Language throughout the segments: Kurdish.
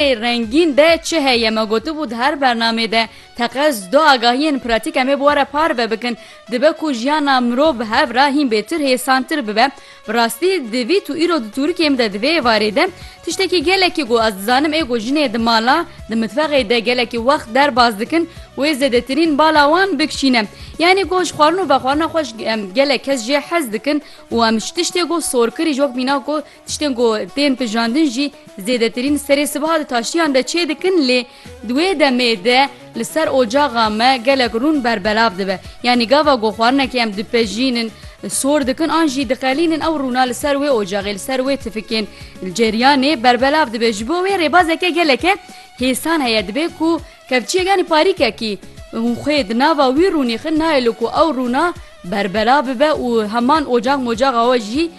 Ê rengîn de çi heye? Me gotibû di her bernamê de teqez du agahiyên pratîk em ê bi we re parve bikin. Dibe ku jiyana mirov bi hev re hîn bêtir hêsantir bibe. Bi rastî divî tu îro di tûrikêm de di vê êvarê de tiştekî gelekî ku ez dizanim ê ku jinê di mala, di mitfexê de gelekî wext derbas dikin wê zêdetirîn bala wan bikişîne. Yanî ku ji xwarin û vexwarina xwe ji gelek kes jê hez dikin û em ji tiştê ku sorkirî ji wek mîna ku Tiştên ku tên tijandin jî zêdetirîn serê sibeha di taştiyan de çê dikin lê di wê demê de li ser ocaxa me gelek rûn berbelav dibe. Yanî gava ku xwarinekê em dipejînin sor dikin an jî diqelînin ew rûna li ser wê ocaxê li ser wê tifikên ceryanê berbelav dibe. Ji bo wê rêbazeke geleke hêsan heye dibe ku Kevçiyek yanî parîkekî û xwê di nava wî rûnîxin nayê li ku ew rûna berbela bibe û heman ocax mocaxa we jî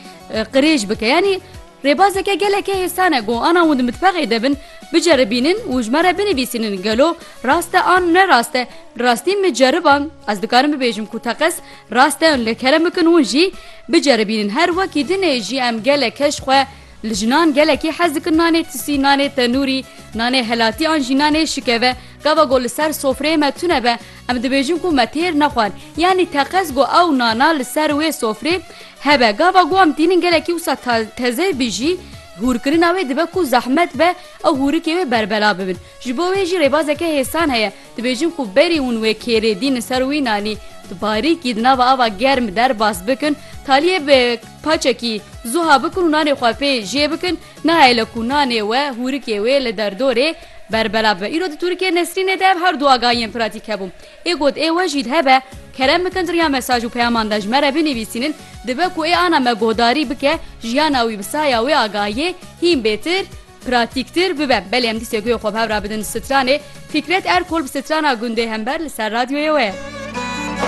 qirêj bike. Yanî rêbazeke gelekê hêsan e ku ana hûn di mitbexê de bin biceribînin û ji me re binivîsînin gelo rast e an ne rast e. Bi rastî min ceriban ez dikarim bibêjim ku teqez rast e lê kerem bikin hûn jî biceribînin her wekî dinê jî em gelek keş xwe Li jinan gelekî hez dikin nanê tisî, nanê tenûrî, nanê helatî an jî nanê şikeve. Gava ku li ser sofreyê me tune be, em dibêjin ku me têr nexwend. Yanî teqez ku ew nana li ser wê sofrê hebe. Gava ku em tînin gelekî wisa teze bî jî, hûrkirina wê dibe ku zehmet be ew hûrikê wê berbela bibin. Ji bo wê jî rêbazeke hêsan heye. Dibêjin ku berî hûn wê kêrê dînin ser wî nanî di barîkî di nava ava germ derbas bikin, taliyê bi paçekî zuha bikin û nanê xwe pê jê bikin, nahêle ku nanê we hûrikê wê li derdorê berbela bibe. Îro di Turkiyê Nesrînê de ev her du agahî yên pratîk hebûn. Ê got ê we jî hebe, kerem bikin di riya mesaj û peyaman de ji me re binivîsînin, dibe ku ê ana me guhdarî bike jiyana wî bi saya wê agahiyê hîn bêtir, Pratîktîr bibe. Belê em dîsê guya xwe bi hev re bidin stranê. Fîkret Erkol bi strana gundê hember li ser radyoyê we ye.